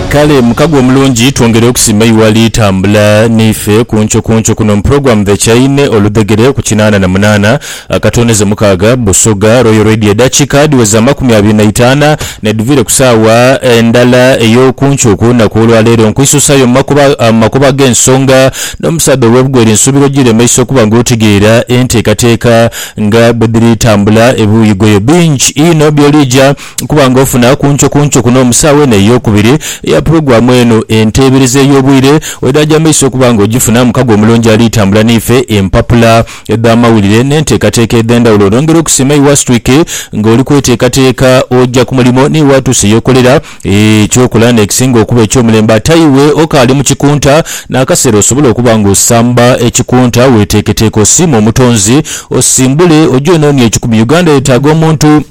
Kale mukago omulungi twongere okusima iwe ali tambula neife kunco kunco kuno mu program The Chaine oludhegere ku kinaana na munaana akatondeze mukaaga Busoga Royal Radio edakika dhiweze amakumi abiri na itaana nedhuvire ku saawa endala eyokunco ku lunaku olwa leero nkwisusayo mu makuba mu makubo agensonga nomusaadha owebugwere nsubira ojire maiso okuba nga otegeera enteekateeka nga bwedhiri tambula ebiwuyi goyo bingi inho byolija Okuba nga ofuna kuncokunco kuno mu saawa eno ey'okubiri eya pulogulaamu eno, enteebereza ey'obwire oidhaja maiso okuba nga ogifuna. Mukago omulungi ali tambula n'ife, empapula edh'amawulire n'enteekateeka edh'endhawulo. Nongera okusiima Iwe Astwick nga oli kweteekateeka oja ku mulimo ni watuuse y'okolera eky'okola n'ekisinga okuba eky'omulembe. Ate iwe okaali mu kikunta, n'akaseera osobole okuba nga osamba ekikunta, weteeketeeke osiime Omutonzi, osimbule oje onoonie ekikumi. Uganda yetaaga omuntu.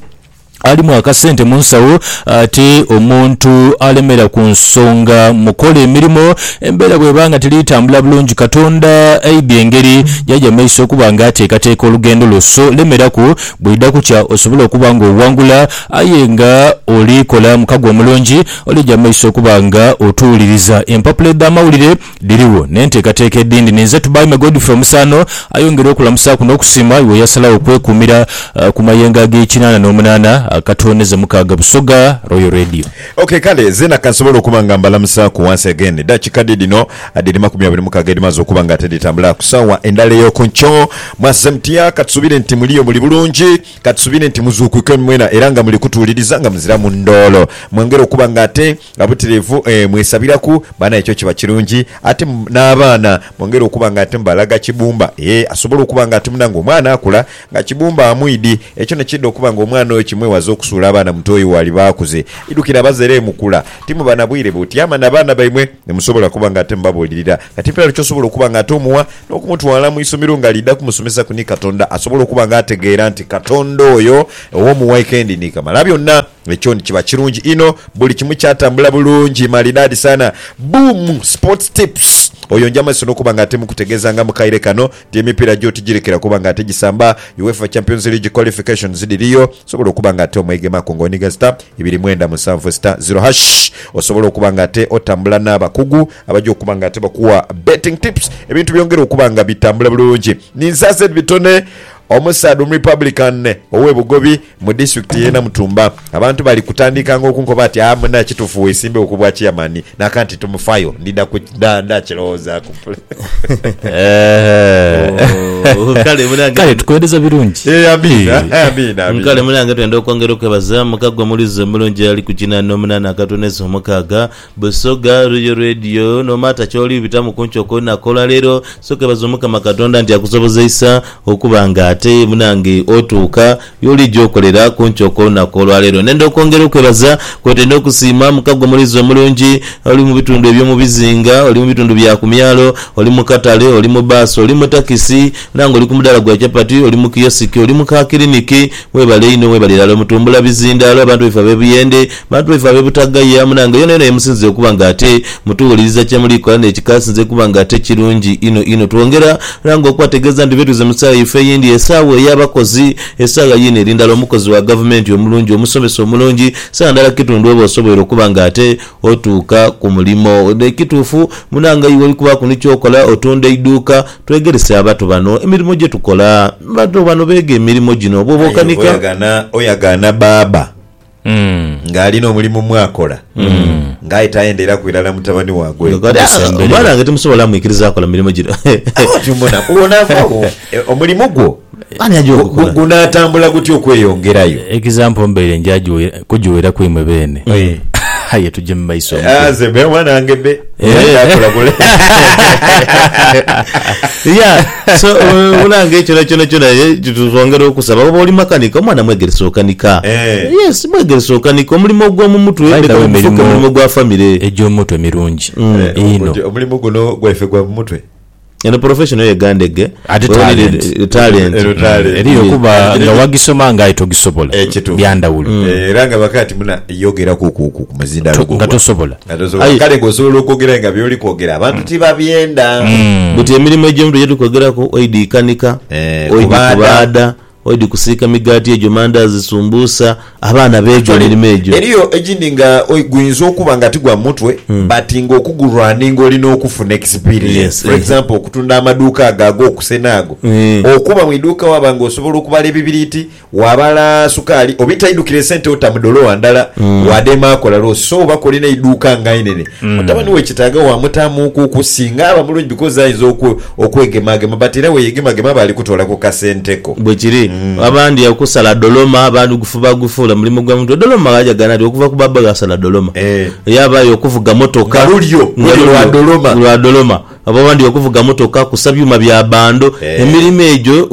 alimu akasente mu nsawo ate omuntu alemera ku nsonga mu kola emirimo, embeera bw'eba nga teri tambula bulungi, Katonda aidha engeri gy'aja mu maiso okuba nga ateekateeka olugendo lwo. So lemeraku, bw'eidha kukya osobole okuba nga owangula aye nga oli kola mukago omulungi, olija mu maiso okuba nga otuwuliriza empapula edh'amawulire. Dhirigho n'enteekateeka edhindi. Ninze Tubaime Godfrey Omusaano ayongera okulamusaaku n'okusiima iwe eyasalagho okwekuumira ku mayengo ag'ekinaana n'omunaana akatoonheze mukaaga Busoga Royal Radio. Ok kale zeena kansobole okuba nga mbalamusaaku once again. Dakika dhe dhino dhiri makumi abiri mukaaga edhimaze okuba nga ate dhitambula ku saawa endhala ey'oku nkyo. Mwazze mutya? Katusuubire nti muliyo muli bulungi. Katusuubire nti muzuukuke mwena era nga muli kutuwuliriza nga muziramu ndoolo. Mwongere okuba nga ate Nga butilivu mwesabiraku baana ekyo kiba kirungi ate n'abaana mwongere okuba nga ate mubalaga Kibumba ee asobole okuba nga ate munange omwana akula nga Kibumba amwidi ekyo nekidha okuba nga omwana oyo kimwewaza okusuula abaana mutoyi waliba akuze idhukira abazere mukula timuba na bwire butyama na baana baimwe nemusobola okuba nga ate mubabulirira kati mperalu kyosobola okuba nga ate omuwa n'okumutwala mu isomero nga lidha kumusomesaku ni Katonda asobole okuba nga ategeera nti Katonda oyo owomuwaikendi ni Kamalabyonna. Ekyo ni kiba kirungi inho. Buli kimu kyatambula bulungi. Maridadi sana. Buumu Sports Tips. Oyo nja maiso n'okuba nga ate mukutegeeza nga mu kaire kano nti emipiira gyo tigirekera kuba nga ate gisamba. UEFA Champions League Qualifications dhiriyo. Osobola okuba nga ate omwegemaku nga onigha star ibiri mwenda musanvu star zero hash. Osobola okuba nga ate otambula n'abakugu abaja okuba nga ate bakuwa betting tips ebintu byongere okuba nga bitambula bulungi. Ninze aze bitone, omusaadha omurepublican ow'e Bugobi. Mu disitulikiti ye Namutumba, abantu bali kutandikanga okunkoba ati aa muna kitufu wesimbewo ku bwa chiyamani naka nti tumufayo ndidha ku nda nda kilowozaku mpule Oh, kale munange Kale tukwendeza birungi. Eh, amina Eh. amina amina Nkale munange twenda okwongera okwebaza muka gwe mulizi omulungi ali ku kinana omunana akatoneza omukaaga Busoga Royal Radio no matter kyoli bitamu kunkyo kolunaku olwa leero sokebaza omukama katonda nti akusobozeisa okuba nga ate munange otuuka yolija okolera kunkyo kolunaku olwa leero nenda okwongera okwebaza kwotenda okusiima muka gwe mulizi omulungi oli mubitundu ebyo mubizinga oli mubitundu bya kumyalo oli mukatale oli mu bus oli mutakisi munange oli kumudaala gwa chapati oli mukiyosiki oli muka kiliniki Webale inho webale irala mutumbula bizindaalo abantu baife abe Buyende, bantu baife abe Butagaya munange yona yona yemusinzire okuba nga ate mutuwuliriza kyemuli kola nekika asinze kuba nga ate kirungi inho inho twongera ranga okubategeeza nti betuze musawa yaife eyindi esawa eya bakozi esawa yiino eri ndala omukozi wa gavumenti omulungi omusomesa omulungi sawa ndala kitundu oba osoboire okuba nga ate otuuka kumulimo ekituufu munange iwe oli kubaaku nikyokola otunda iduuka Twegerese abato bano emirimo gye tukola. Abato bano beega emirimo gino bwoba Aye okanika. oyagana oyagana baaba nga ali nomulimu mwakola nga aye tayendeeraku irala mutabani wagwe Nga kati, ah, omwana wange timusobola mwikiriza akola mirimo gino. Aba oti mbona bwonavawo e, omulimu gwo Ani aja okukola? Gunaatambula gutya okweyongerayo? Example mbaire nja kujiweera ku imwe beene. Aye tuje mu maiso mutyo. Nze be oba nange be. Yeah, so omulango ekirala kyonakyona twongera okusaba. Oba oli makanika, omwana mwegerese okanika. Yes, mwegerese okanika. Omulimo ogw'omu mutwe leka gufuuke mulimo gwa famire. Egy'omutwe mirungi inho. Omulimu guno gwaife gwa mu mutwe. Eno profession yo yegandege. Ate Where we need talent. talent. Eno talent. Eriyo kuba Kati kino nga ki- wagisoma nga aye togisobola. Eh, kituufu. Byandawulo. Eh, era nga bakaga nti muna yogera ku ku ku ku muzindaalo To- gwo nga gwa- tosobola. nga tosobola Aye- kale ng'osobola okwogera aye nga byoli kwogera abantu tibabyenda Buti emirimu egy'omuntu gyetuli kwogeraku oidi kanika, Eh, oidi kubaada. kubaada, Oidhi kusiika migaati egyo, mandaazi, sumbuusa, abaana beega Actually, emirimo egyo. eriyo egindi nga oi- guinza okuba nga ti gwa mutwe but nga okugurunning olina okufuna experience. Yes, For eh. example okutunda amaduuka ago ag'okusena ago. Eh. Okuba mu iduuka waba nga osobola okubala ebibiriiti, wabala sukaali oba itaidukira esente ota mu dolowa ndala, wadeema akola loss. So oba k'olina eiduuka nga inene, Mutabani we kitaaga waamutaamuuku okusinga aba mulungi because ayinza okwe, okwegemaagema but era bweyegemagema aba ali kutoola ku kasente ko. Bwekiri. Abandi okusala doloma abandi gufuba gufuula mulimu gwa mutwe. Doloma ghajagana nti okuva ku baaba ghe asala doloma. Eeh. Yabaayo okuvuga motoka. Nga lulyo, luli lwa doloma. Lwa doloma. Oba abandi okuvuga motoka, kusa byuma bya bando, emirimo egyo.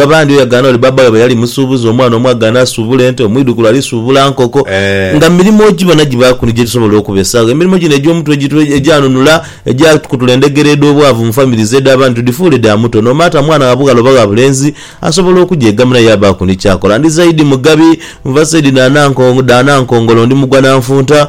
Abandi oyagana oli baba waibwe yali musuubuzi, omwana omu agana asuubula ente, omwidhukulu ali suubula nkoko. Nga mirimo ogibona gibaaku ni gye tusobola okubesaagho. Emirimo gino egy'omutwe egitwe egyanunula, egyakutula endhegera edh'obwavu mu famire zaidhu abandi tudhifuule dha muto. Nomaata mwana wa bughala oba wa bulenzi asobola okugyegamirira yaabaaku ni ky'akola. Ndi zaidi Mugabi, nva saidi dha Nankongolo, ndi mugwa na nfunta.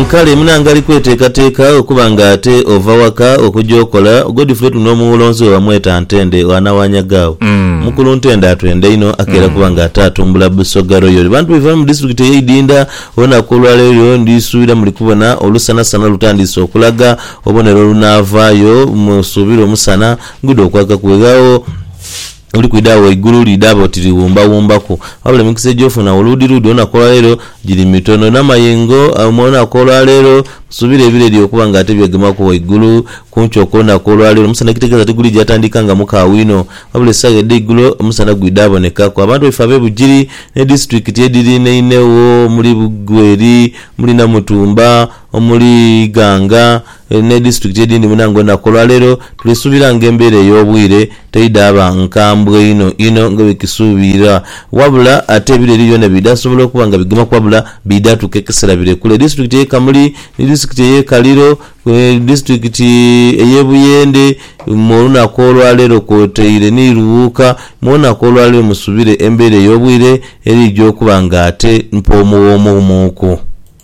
Nkale munangali kweteekateeka okuba nga ate ova waka okuja okola, Godfrey Tunoo Muwulonzi we bamweta Ntende wana wa Nyagaawo. Mukulu Ntende atwenda inho akeera kuba nga ate atumbula Busoga Royal. Bantu baife abali mu disitulikiti eye Idinda, olunaku olwaleero ndi suubira muli kubona olusanasana olutandiise okulaga, obonere olunaavaayo, musuubire omusana gudhe okwakaku weghagho. Oli kwidha agho eigulu liidhaba oti liwumbawumbaku. Wabula emikisa egy'ofuna agho luudiluudi olunaku olwaleero giri mitono. N'amayengo mu lunaku olwaleero nsuubira ebireri okuba nga ate byegemaku ghaigulu kumpi okw'olunaku olwaleero. Omusana ekitegeeza tigulija atandika nga mukaawu inho. Wabula esaawa edha eigulo omusana gwidha abonekaku. Abantu baife ab'e Bugiri ne disitulikiti edhiriinainhegho omuli Bugweri, omuli Namutumba, omuli Iganga, eri ne disitulikiti edindi munange olunaku olwaleero tulisuubira nga embeera ey'obwire teidhaba nkambwe inho inho nga bwekisuubirwa wabula ate ebiro eriyo byona bidhasobola okuba nga bigemaku wabula bidha tuuka ekisera birekule Disitulikiti eye Kamuli ni disitulikiti eye Kaliro ni disitulikiti eye Buyende mu olunaku olwaleero kwotaire ni Luwuuka mu olunaku olwaleero musubire embeera ey'obwire erija okuba nga ate mpoomuwoomuumuuku.